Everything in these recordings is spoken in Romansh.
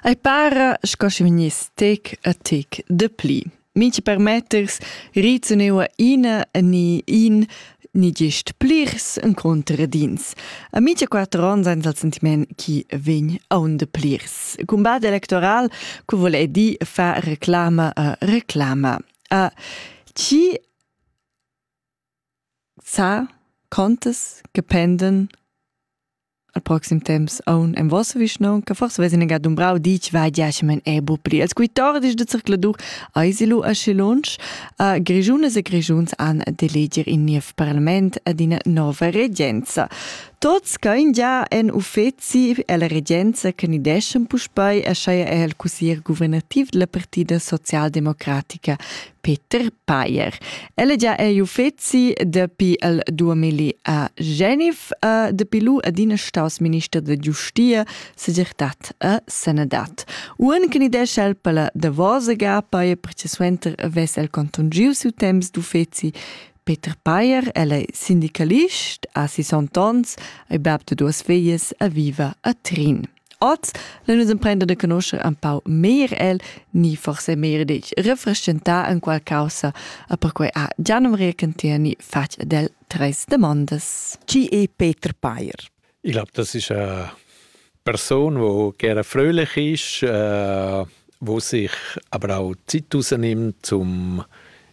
Ei para sco sche vegniss tec a tec dapli. Minchi permetters reaziuneu ina ni in ni gist plirs incontradins. A mincha quatter ons aint dal sentiment chi vegn aunda plirs. Cumbat electoral cu voul eir dir far reclama a reclama. A chi Sa contas che pendan al proxim temps aun en vossa vischnaunca, forsa vess ina ga dumbrau ditg, vai giachemen è bu pli. Els quitordis da zercladur eisi lu aschi lunsch. Uh, Grischunas e Grischuns han d'eleger in niev parlament ed ina nova regenza. Tots ch'ein gia en uffeci ella regenza che ni deschen puspei, aschia è el cussier guvernativ della partida socialdemocratica. Peter Payer. El è gia ei uffeci dapi il 2000 a Genf. Uh, dapi lu adina staus minister da giustia, segirtad e sanadad. Un che ni desce el per la davosa gapa e perché suenter vess el contungiu siu temps d'uffeci Peter Payer, el è sindicalist, ha 60 ans, è bab de duas figlies, e viva a Trin. Oz nun nus emprender da conoscher un pau meglier el, ni forse meglier ditg refrestgentar en qual causa, e perquai ha Gian Maria Cantiani fatg ad el treis damondas. Chi è Peter Payer? Ich glaube, das ist eine Person, die gerne fröhlich ist, äh, wo sich aber auch Zeit rausnimmt, um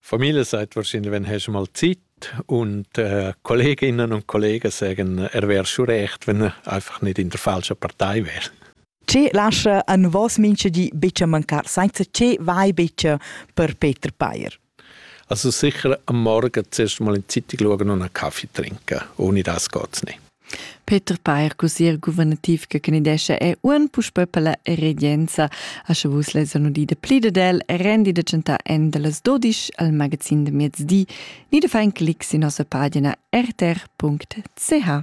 Familias ait vaschin venheschem al zit und äh, Kolleginnen und Kollegen sagen, er wäre schon recht, wenn er einfach nicht in der falschen Partei wäre. Che lascia a vos minche di bice mancar, senza che vai bice per Peter Payer? Also sicher am Morgen zuerst mal in die Zeitung schauen und einen Kaffee trinken. Ohne das geht's nicht. Peter Peyer, cussier guvernativ che candidescha è uan puspè per la regenza. A sche vus lesan udì de plida del, rendi da chantar en de las dodisch al magazin de mezdi, ni de far in clic sin nossa pagina rtr.ch.